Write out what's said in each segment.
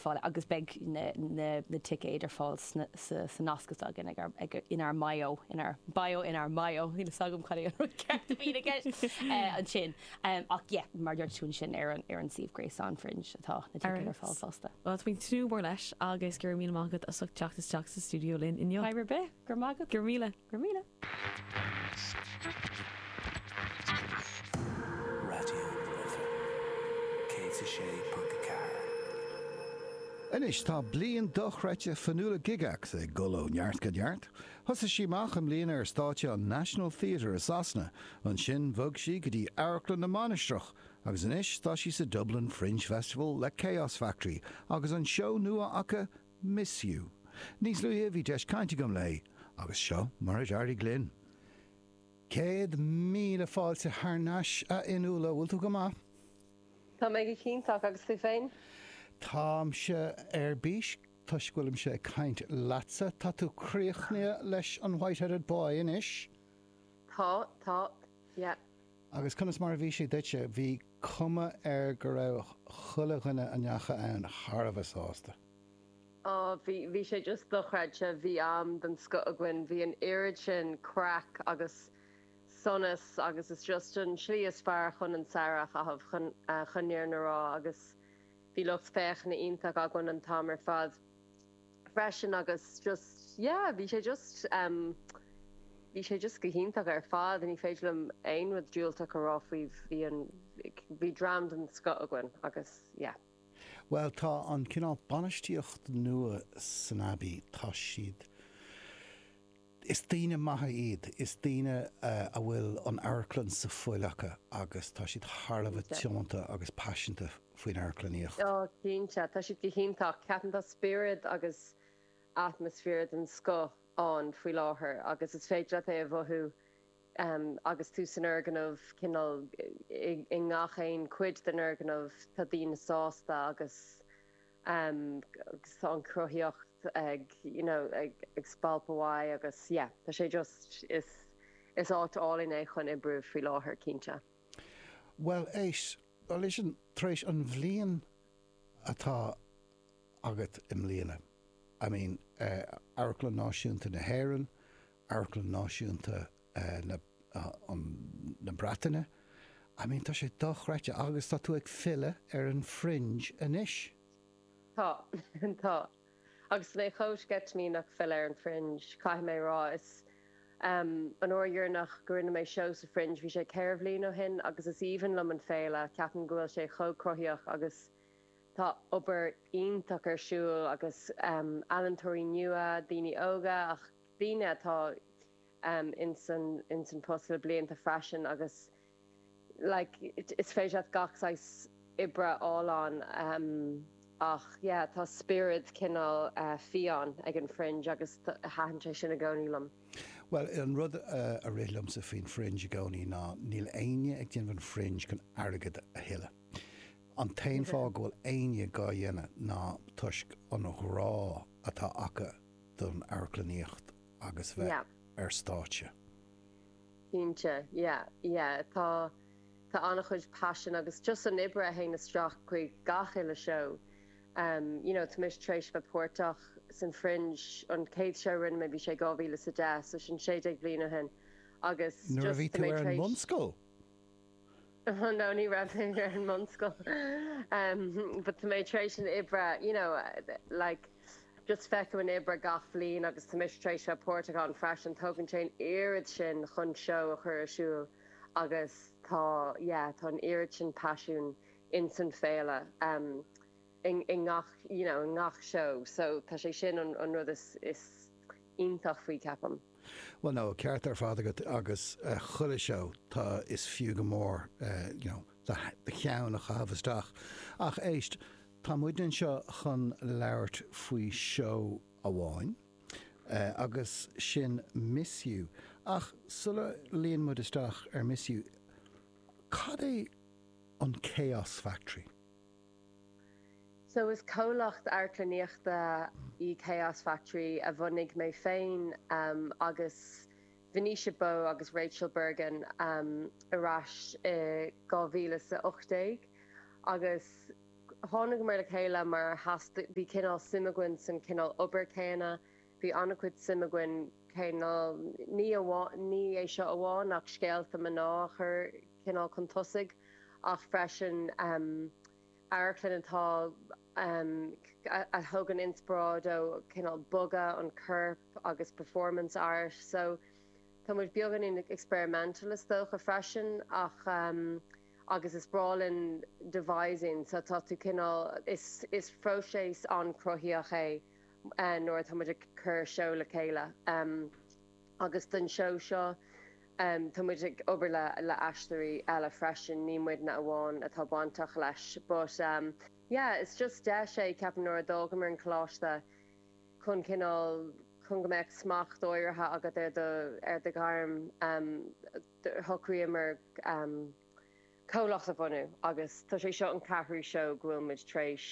fáil agus beidh na ticéid ar fáil sa nasc is againn inár mbio, inár bio, inár mbio, níl fhios agam cad é an rud ceart a bhíonn i gceist ansin ach yeah mar a dúirt tú ansin ar an suíomh gréasáin Fringe atá na ticéid ar fáil fosta. Well, tá míle tnúth mór leis agus go raibh míle maith agat as ucht teacht isteach sa stiúideo linn inniu. Fadhb ar bith. Go raibh maith agat. Go raibh míle. Go raibh míle! Raidió na Life 106.4. Anois tá bliain dochreidte Fionnuala Gygax ag dul ó neart go neart. Thosaigh sí amach i mbliana ar stáitse an National Theatre i Sasana, ansin bhog sí go dtí Amharclann na Mainistreach agus anois tá sí sa Dublin Fringe Festival le Chaos Factory agus an seó nua acu MISS/YOU. Níos luaithe bhí deis cainte agam léi agus seo mar a d'éirigh linn. Céad míle fáilte thar nais a Fhionnuala, bhfuil tú go maith? Tá mé go hiontach agus tú féin? Táimse ar bís toisc go bhfuilimse ag caint leatsa. Tá tú críochnaithe leis an White-Headed Boy anois? Tá, tá, yeah. Agus conas mar a bhí sé duitse? Bhí cuma air go raibh chuile dhuine a ndeachaigh ann thar a bheith sásta. Ó, bhí, bhí sé just dochreidte. Bhí am den scoth againn. Bhí an oiread sin craic agus sonas agus is just an tslí is fearr chun an samhradh a chaitheamh, chun an fhírinne a rá agus bhí lucht féachana iontach againn an t-am ar fad. freisin agus just yeah bhí sé just em bhí sé just go hiontach ar fad ní féidir liom aon rud diúltach a rá faoi bhí an bhí dream den scoth againn agus yeah. Bhuel tá an cineál bainistíocht nua san Abbey tá siad Is daoine maithe iad. Is daoine a bhfuil an amharclann san fhuil acu agus tá siad thar a bheith tiomanta agus paiseanta faoin amharclannaíocht. Cinnte, tá siad go hiontach. Ceapaim tá spiorad agus atmaisféar den scoth ann faoi láthair agus is féidir leat é a mhothú agus tú san fhoirgneamh, cineál i ngach aon chuid den fhoirgneamh tá daoine sásta agus. agus tá an chruthaitheacht ag you know ag spalpadh uaidh agus yeah tá sé just is is áit álainn é chun oibriú faoi láthair cinnte. Bhuel éist, listen, tar éis an bhliain atá agat i mbliana, I mean eh Amharclann Náisiúnta na hÉireann, Amharclann Náisiúnta na. na Breataine. I mean, tá sé dochreidte agus tá tú ag filleadh ar an Fringe anois. Tá, tá. Agus mé chomh sceitimíneach filleadh ar an Fringe, caithfidh mé a rá. Is, em, an uair dheireanach go rinne mé seó sa Fringe, bhí sé ceithre bhliain ó shin agus is aoibhinn liom an féile, ceapaim go bhfuil sé chomh cruthaíoch agus tá obair iontach ar siúl agus, em, ealaintóirí nua, daoine óga ach daoine atá, um ins an ins an post le blianta freisin agus like is féidir leat gach saghas oibre a fháil ann um ach yeah tá spiorad cineál eh fiáin ag an Fringe agus thaitin sé sin i gcónaí liom. Bhuel an rud eh a rith liomsa faoin Fringe i gcónaí ná níl éinne ag déanamh an Fringe chun airgead a thuilleadh. An t-aon fáth go bhfuil éinne dhá dhéanamh ná toisc an ghrá atá acu don amharclannaíocht, agus bheith yeah. ar stáitse. Cinnte, yeah, yeah. Tá, tá an-chuid passion agus just an oibre a théann isteach chuig gach uile seó. Um, you know, tá mise tréis bheith páirteach san Fringe, an chéad seó a rinne mé bhí sé 2010, so sin sé déag bliain ó shin, agus just tá mé tréis... Nuair a bhí tú ar an mbunscoil? No ní raibh mé ar an mbunscoil but tá mé tar éis an oibre you know like just feiceann tú an oibre gach bhliain agus tá mise tar éis bheith páirteach ann freisin. Tógann sé an oiread sin chun seó a chur ar siúl agus tá yeah tá an oiread sin paisiún in san féile. i ngach, you know, i ngach seó so tá sé sin an, an rud is, is iontach faoi ceapaim. Bhuel no, ceart ar fad agat agus chuile seó tá, is fiú go mór you know, do, do cheann a chaitheamh isteach ach éist, tá muid anseo chun labhairt faoi seó amháin agus sin Miss You ach sula luíonn muid isteach ar Miss You, cad é an Chaos Factory? So is comhlacht amharclannaíochta í Chaos Factory a bhunaigh mé féin agus Venetia Bowe agus Rachel Bergin ar ais i 2018 agus tháinagamar le chéile mar theastaigh, bhí cineál suim againn san cineál obair céanna. Bhí an-chuid suim againn cineál ní amháin, ní é seo amháin ach scéalta mná a chur cineál chun tosaigh ach freisin amharclann atá a thógann inspioráid ó cineál bogadh an choirp agus performance art. So tá muid beagáinín experimental is dócha freisin ach agus is breá linn devising so tá tú cineál is is phróiseas an-chruthaíoch é nuair atá muid ag cur seó le chéile agus don seó seo tá muid ag obair le le aisteoirí eile freisin ní muidne amháin atá bainteach leis but yeah is just deis é ceapaim nuair a d'fhágamar an coláiste chun cineál chun go mbeadh smacht áirithe agat ar do ar do ghairm shocraíomar comhlacht a bhunú agus tá sé seo an ceathrú seó go bhfuil muid tar éis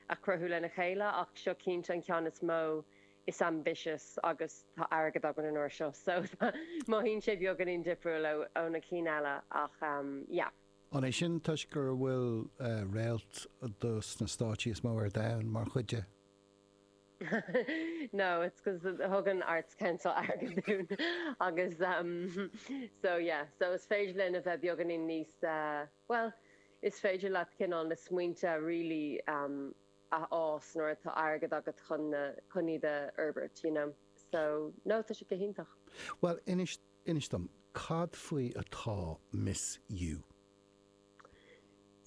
a chruthú lena chéile ach seo cinnte an ceann is mó, is ambitious agus tá airgead againn an uair seo so mothaíonn sé beagáinín difriúil ó na cinn eile ach yeah. An é sin toisc go bhfuil réalta stáitse is mó ar domhan mar chuid de? no it's 'cause thug an Arts Council airgead dúinn agus em so yeah so is féidir linn a bheith beagáinín níos eh bhuel is féidir leat cineál na smaointe really em a fhás nuair atá airgead agat chun na chun iad a fhorbairt you know so no tá sé go hiontach. Bhuel inis inis dom cad faoi atá Miss You?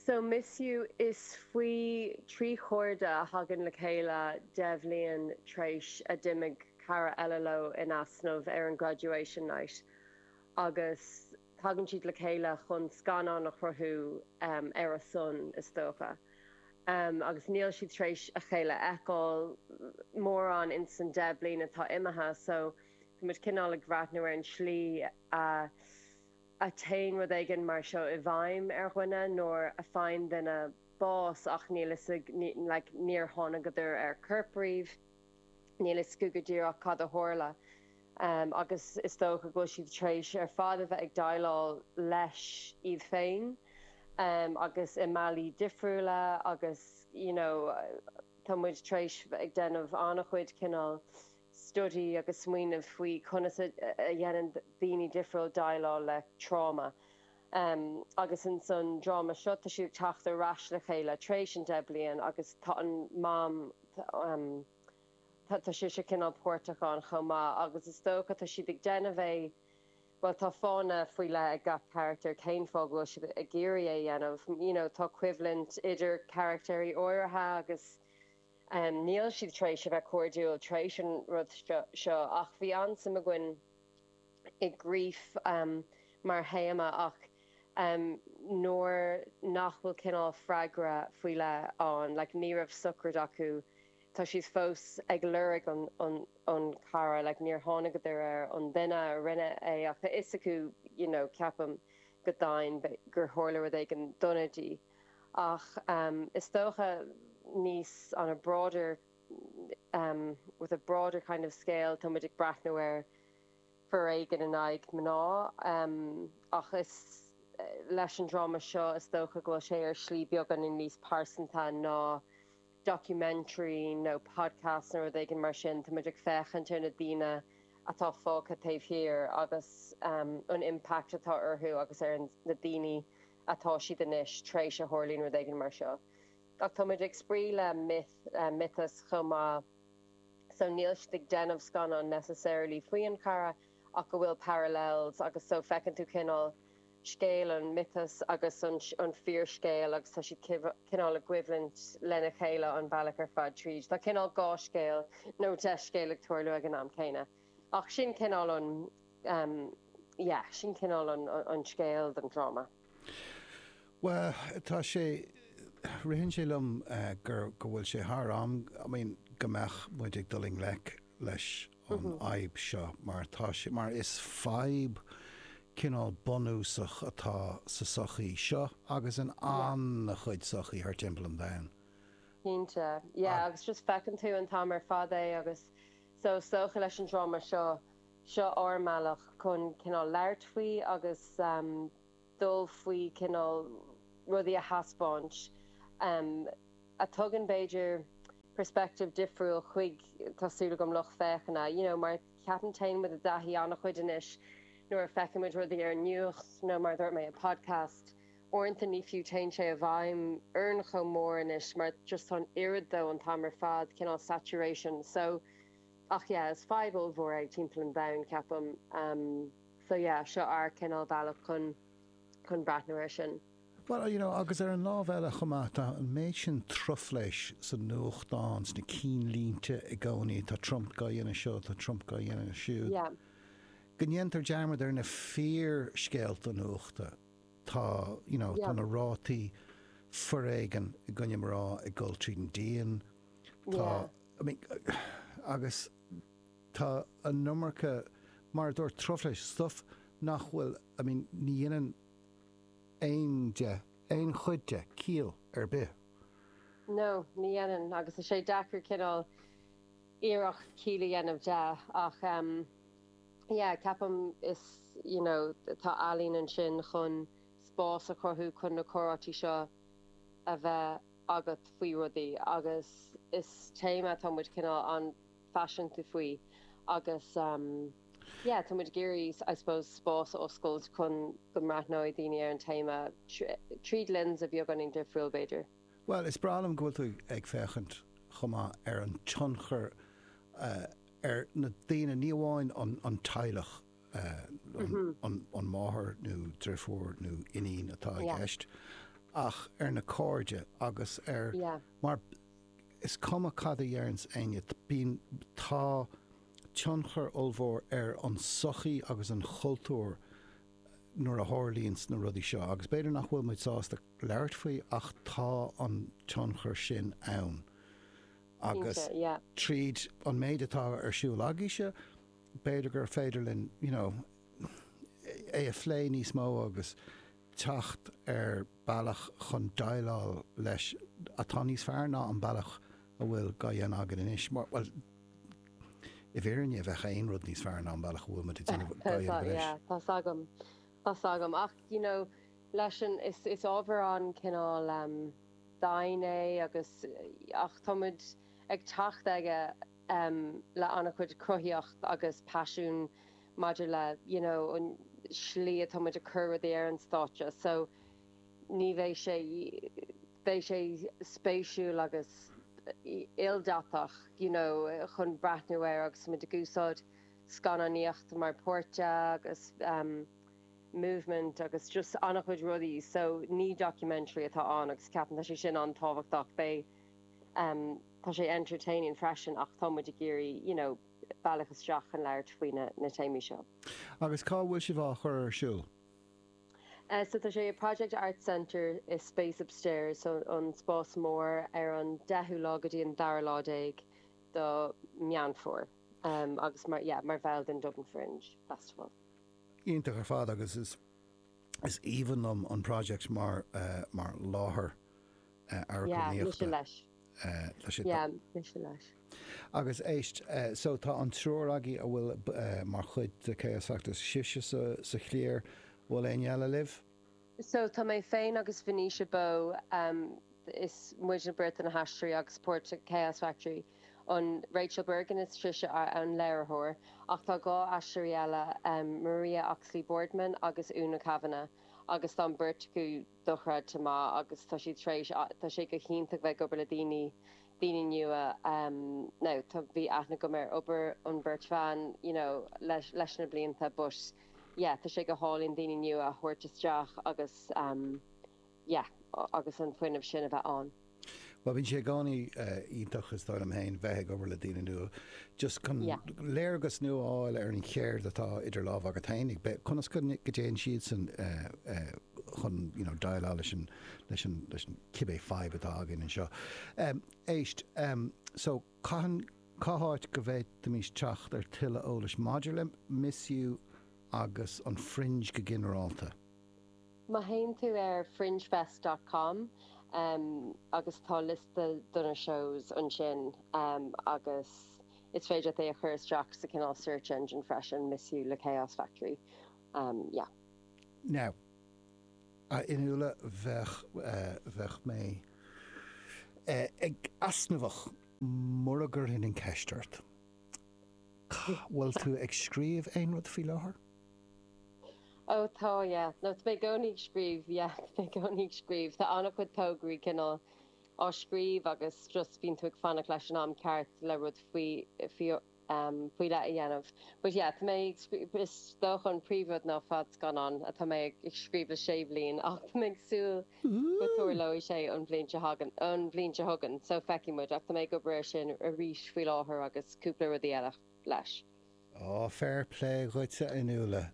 So Miss You is faoi trí chairde a thagann le chéile deich mbliana t'réis a d'imigh cara eile leo in easnamh ar an graduation night agus tagann siad le chéile chun scannán a chruthú ar a son is dócha agus níl siad t'réis a chéile a fheiceáil mórán insan deich mbliana atá imithe so tá muid cineál ag breathnú ar an tslí a a téann rud éigin mar seo i bhfeidhm ar dhuine nuair a faigheann duine bás ach níl fhios ag, like, níor thángadar ar corp riamh, níl fhios acu go díreach cad a tharla agus is dócha go bhfuil siad tar éis ar fad a bheith ag déileáil leis iad féin agus i mbealaí difriúla agus, you know, tá muid tar éis ag déanamh an-chuid cineál. study agus smaoineamh faoi conas a dhéanann daoine difriúil déileáil le tráma agus insan dráma seo tá siad ag teacht ar ais le chéile tar éis an 10 bliain agus tá an mam tá sise cineál páirteach ann chomh maith agus is dócha tá siad ag déanamh é bhuel tá fáthanna faoi leith ag gach carachtar cén fáth go bhfuil siad ag iarraidh é a dhéanamh you know tá coimhlint idir carachtair áirithe agus Níl siad tar éis a bheith cairdiúil tar éis an rud seo ach bhí an-suim againn i grief mar théama ach nuair nach bhfuil cineál freagra faoi leith ann, like ní raibh sochraid acu, tá siad fós ag lorg an cara, like níor thángadar ar an duine a rinne é ach tá fhios acu, you know, ceapaim go domhain gur tharla rud éigin dona di. ach is dócha níos on a broader with a broader kind of scale táimid ag breathnú ar foréigean in aghaidh mná ach is leis an dráma seo is dócha go bhfuil sé ar slí beagáinín níos pearsanta ná documentary nó podcast nó rud éigin mar sin táimid ag féachaint ar na daoine atá fágtha taobh thiar agus an impact atá orthu agus ar na daoine atá siad anois tar éis a tharlaíonn rud éigin mar seo. Ach táimid ag spraoi le myth, miotas chomh maith so níl siad ag déanamh scannán necessarily faoi an chara ach go bhfuil parallels agus so feiceann tú cineál scéal an mhiotas agus an an fíor scéal agus tá siad cineál i gcoimhlint lena chéile an bealach ar fad tríd. Tá cineál dhá scéal nó deich scéal ag tarlú ag an am céanna. Ach sin cineál an, em, yeah, sin cineál an, an scéal don dráma. Bhuel, tá sé, ritheann sé liom gur, go bhfuil sé thar am, I mean, go mbeadh muid ag dul i ngleic leis an fhadhb seo mar tá sé, mar is fadhb cineál bunúsach atá sa tsochaí seo agus in an-chuid sochaí thart timpeall an domhain. Cinnte. Yeah, agus just feiceann tú an t-am ar fad é agus So is dócha leis an dráma seo, seo ár mbealach chun cineál labhairt faoi agus dul faoi cineál rudaí a thaispeáint a tugann b'fhéidir perspective difriúil chuig tá súil agam lucht féachana you know mar ceapaim téann muid i dtaithí an-chuid anois nuair a feiceann muid rudaí ar an nuacht nó mar a dúirt mé i podcast Uaireanta ní fiú, téann sé i bhfeidhm orainn chomh mór anois mar just tá an oiread de an t-am ar fad, cineál saturation. So, ach yeah, is fadhb ollmhór é timpeall an domhain, ceapaim. So yeah, seo ár cineál bealach chun chun breathnú ar sin. Bhuel, you know, agus ar an lámh eile chomh maith, tá an méid sin truflais sa nuachtán, sna cinn línte i gcónaí, tá Trump á dhéanamh seo, tá Trump á dhéanamh siúd, yeah. go ndéantar dearmad ar na fíor scéalta nuachta. Tá, you know, tá na rátaí foréigean i gcoinne mná ag dul tríd an díon. Tá, I mean, agus tá an iomarca, mar a dúirt tú truflais, stuff nach bhfuil, I mean, ní dhéanann aon de, aon chuid de ciall ar bith. No, ní dhéanann agus tá sé deacair cineál iarracht ciall a dhéanamh de ach. yeah ceapaim is you know tá ealaín ansin chun spás a chruthú chun na comhráití seo a bheith agat faoi rudaí agus is téama tá muid cineál an-phaiseanta faoi agus em yeah tá muid ag iarraidh I suppose spás a oscailt chun go mbreathnóidh daoine ar an téama tríd lens beagáinín difriúil b'fhéidir. Bhuel is breá liom go bhfuil tú ag féachaint chomh maith ar an tionchar a ar na daoine, ní amháin an teaghlach, an máthair nó drifiúr nó iníon atá i gceist, ach ar na cairde agus ar, mar is cuma cad a deireanns éinne, bíonn, tá tionchar ollmhór ar an sochaí agus an chultúr nuair a tharlaíonns na rudaí seo agus b'fhéidir nach bhfuil muid sásta labhairt faoi ach tá an tionchar sin ann. agus tríd an méid atá ar siúl agaibhse b'fhéidir gur féidir linn you know é a phlé níos mó agus teacht ar bealach chun déileáil leis atá níos fearr ná an bealach a bhfuil á dhéanamh againn anois. Mar bhuel i bhfírinne bheadh aon rud níos fearr ná an bealach a bhfuil muid ag déanamh á dhéanamh anois. Tá 's agam. 's agam ach you know leis an is ábhar cineál em dain é agus ach tá muid ag teacht aige em le an-chuid cruthaíocht agus paisiún maidir le you know an slí atá muid ag cur rudaí ar an stáitse so ní bheidh sé beidh sé spéisiúil agus ildatach you know chun breathnú air agus tá muid ag úsáid scannánaíocht mar páirt de agus movement agus just an-chuid rudaí so ní documentary atá ann agus ceapaim tá sé sin an-tábhachtach beidh tá sé entertaining freisin ach tá muid ag iarraidh you know bealach isteach chun labhairt faoi na na téamaí seo. Agus cá bhfuil sibh á chur ar siúl? So tá sé i Project Arts Centre sa Space Upstairs so an spás mór ar an 10ú lá go dtí an 2ú lá déag do Meán Fómhair. Um agus mar yeah mar bhall den Dublin Fringe Festival. Iontach ar fad agus is is aoibhinn liom an Project mar mar láthair amharclannaíochta tá sé mise leis. Agus éist so tá an triúr agaibh a bhfuil mar chuid de Chaos Factory sibhse sa chliar bhfuil éinne eile libh? So tá mé féin agus Venetia Bowe, is muidne beirt na haisteoirí agus part of Chaos Factory, an Rachel Bergin is sise an léiritheoir, ach tá dhá aisteoir eile, Maria Oxley Boardman agus Una Kavanagh, agus tá an bheirt acu dochreidte maith agus tá siad tar éis, tá sé go hiontach bheith ag obair le daoine, daoine nua, now tá, bhí aithne agam ar obair an bheirt bhan you know leis na blianta but. yeah tá sé go hálainn daoine nua a thabhairt isteach agus yeah agus an fuinneamh sin a bheith ann. Bhuel bíonn sé i gcónaí iontach is dóigh liom féin bheith ag obair le daoine nua just chun yeah léargas nua a fháil ar an cheird atá idir lámha agat féinig, bheith, conas go dtéann siadsan chun you know déileáil leis an leis an leis an cibé fadhb atá againn anseo. Éist, so. Cathain, cá háit go bhféadfaimis teacht ar tuilleadh eolais maidir le Miss You agus an Fringe go ginearálta? Má théann tú ar fringefest dot com agus tá liosta de na shows ansin agus is féidir leat é a chur isteach sa cineál search engine freisin, Miss You le Chaos Factory. Yeah. Now. A Fhionnuala bheadh bheadh mé easnamhach. Mura gcuirfinn an ceist ort, an bhfuil tú ag scríobh aon rud faoi láthair? Ó tá yeah. No, mé i gcónaí ag scríobh yeah. Mé i gcónaí ag scríobh. Tá an-chuid tograí cineál á scríobh agus just bíonn tú ag fanacht leis an am ceart le rud faoi faoi faoi leith a dhéanamh. But yeah, tá mé ag scríobh, is dócha an príomhrud ná fadscannán atá mé ag scríobh le sé bhliain ach tá mé ag súil go dtarlóidh sé an bhliain seo chugainn, an bhliain seo chugainn, so feicfidh muid ach tá mé ag obair air sin arís faoi láthair agus cúpla rudaí eile leis. Oh, fair play dhuit a Fhionnuala.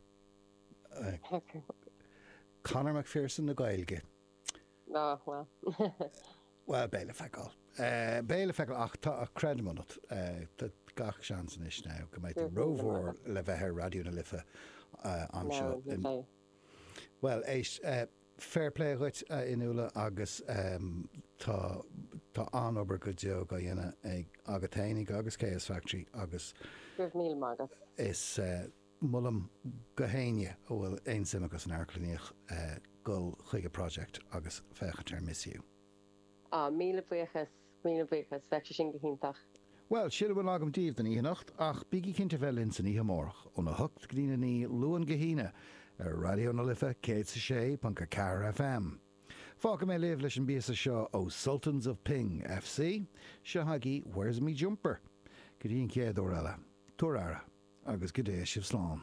Conor McPherson na Gaeilge. Ná fuil. Bhuel, beidh le feiceáil. Beidh le feiceáil ach tá creideamh agam ionat. Tá gach seans anois now go mbeidh tú rómhór le bheith ar Raidió na Life anseo in, bhuel, éist, fair play dhuit, a Fhionnuala agus tá an-obair go deo á dhéanamh agat fhéinig agus Chaos Factory agus is. Molaim do éinne a bhfuil aon suim acu san amharclannaíocht dul chuig an Project agus féachaint ar Miss You. Ah, míle buíochas, míle buíochas, bheadh sé sin go hiontach. Bhuel, sin a bhfuil agam daoibh don oíche anocht, ach bígí cinnte bheith linn istoíche amárach, óna hocht go dtí a naoi, Luan go hAoine, ar Raidió na Life 106.4 FM. Fágfaidh mé sibh leis an bpíosa seo ó Sultans of Ping FC, seo chugaibh Where's Me Jumper? Go dtí an chéad uair eile, tugaigí aire agus go dtéigh sibh slán.